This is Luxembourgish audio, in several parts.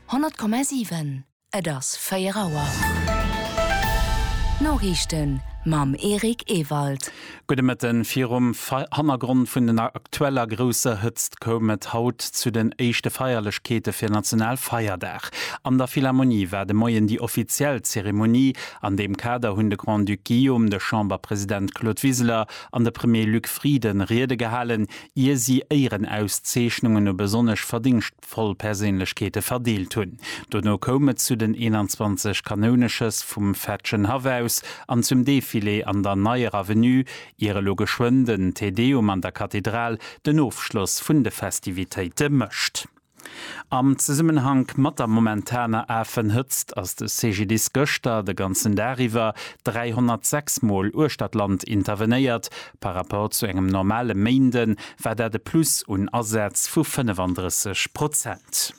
100,7 Et ass 4 Auer. D'Noriichten mam Eric Ewald. Gudde Mëtten. Virum Hannergrond vun den aktueller grousser Hëtzt koum et haut zu den éischte Feierlechkeete fir Nationalfeierdag. An der Philharmonie war de Moien déi offiziell Zeremonie. An deem Kader hunn de Grand-Duc Guillaume, de Chamberpresident Claude Wiseler an de Premier Luc Frieden Riede gehalen, ier si Éierenauszeechnungen u besonnesch verdéngschtvoll Perséinlechkeete verdeelt hunn. Dono koum et zu den 21 Kanouneschëss vum Fetschenhaff aus an zum Defilé an der Neier Avenue, ier elo geschwënn den Te Deum an der Kathedral den Ofschloss vun de Festivitéite mécht. Am Zesummenhank mat der momentaner Afenhëtzt ass de CGDIS gëschter de ganzen Dag iwwer 306 Mol uechter d'Land intervenéiert. Par Rapport zu engem normale Méinde war dat e Plus un Asätz vu 35 Prozent.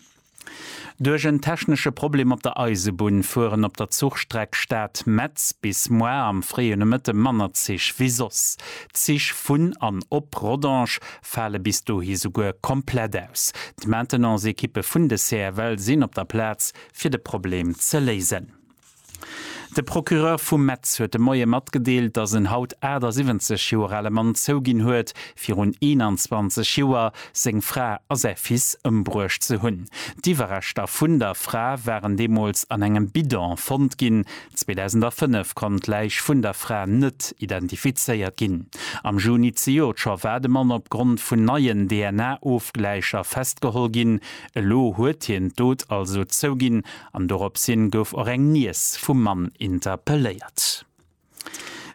Duerch en technesche Problem op der Eisebunn fueren op der Zuchstreck Stad, Metz bis moar am fréie Nomëtte manner Zich wéi soss. D'Zich vun an op Rodange fale bis dohi souguer komplett aus. D'Maintenance-Ekippe vun de CFL sinn op der Plaz, fir de Problem ze léisen. De Procureur vu Metz huet de Moie matgedeelt, datt en haut 78 Joer ale Mann zouginn huet, virun 21 Joer seng Fra a säi Fils ëmbruecht ze hunn. D'Iwwerreschter vun der Fra waren deemools an engem Bidon fonnt ginn. 2005 konnt d'Läich vun der Fra net identifizéiert ginn. Am Juni zejoert scho war de Mann opgrond vun neien DNA-Ofgläicher festgeholl ginn. Elo huet hien d'Dot also zouginn an doropshin gouf och eng Niess vum Mann interpelléiert.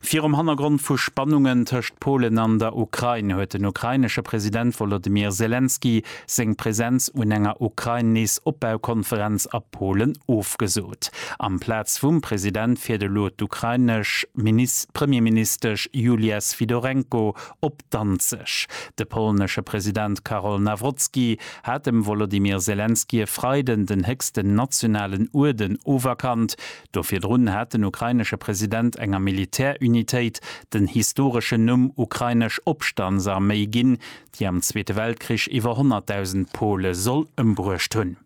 Virum Hannergrond vu Spannungen tëscht Polen an der Ukrain huet den ukrainesche President Wolodymyr Selenskyj seng Presenz un enger Ukrain-Nees-Opbaukonferenz a Polen ofgesot. Amplaz vum President fiert elo d'ukrainesch Premierministesch Julia Swidorenko op Danzeg. De polnesche President Karol Nawrocki hat dem Wolodymyr Selenskyj e Freiden den héchsten nationalen Uerden oferkannt. Do virdrun hat den ukrainesche President enger Militärunitéit den historeschen Numm Ukrainesch Opstandsarméi ginn, déi am Zweete Weltkrich iwwer 100.000 Pole soll ëmbruecht hunn.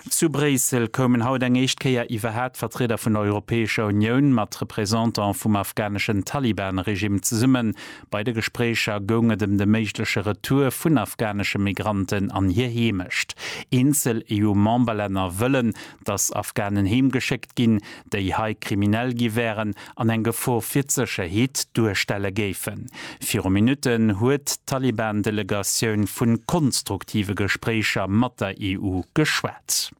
Zu Bréissel koumen haut eng éischt Kéier iwwerhaapt Vertrieder vun der Europäescher Unioun mat Représentant vum afghaneschen Taliban-Regime zesummen. Bei de Gespréicher goung et em de méigleche Retour vun afghanesche Migranten an hir Heemecht. Eenzel EU-Memberlänner wëllen, datt Afghanen heemgeschéckt ginn, déi hei kriminell gi wären an eng Gefor fir d'Sécherheet duerstelle géifen. Viru Minutten huet d'Taliban-Delegatioun vu konstruktive Gespréicher mat der EU geschwat.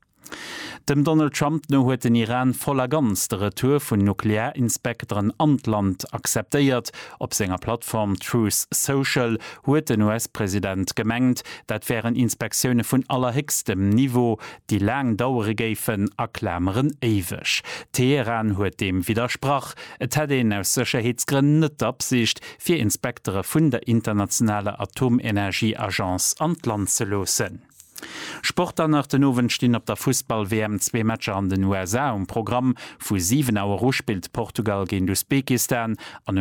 Dem Donald Trump no huet den Iran voll a ganz de Retour vun Nuklearinspekteren an d'Land acceptéiert. Op senger Plattform Truth Social huet den US-President gemengt, dat wären Inspektioune vun allerhéchstem Niveau, déi laang dauere géifen a Klameren éiweg. Teheran huet deem widdersprach, et hätt een aus Sécherheetsgrënn net d'Absicht, fir Inspektere vun der internationaler Atomenergieagence an d'Land ze loossen. Sport dann nach, Den Owend stinn op der Fussball-WM zwee Matcher an den USA um Programm. Vu 7 Auer u spillt Portugal géint Usbekistan an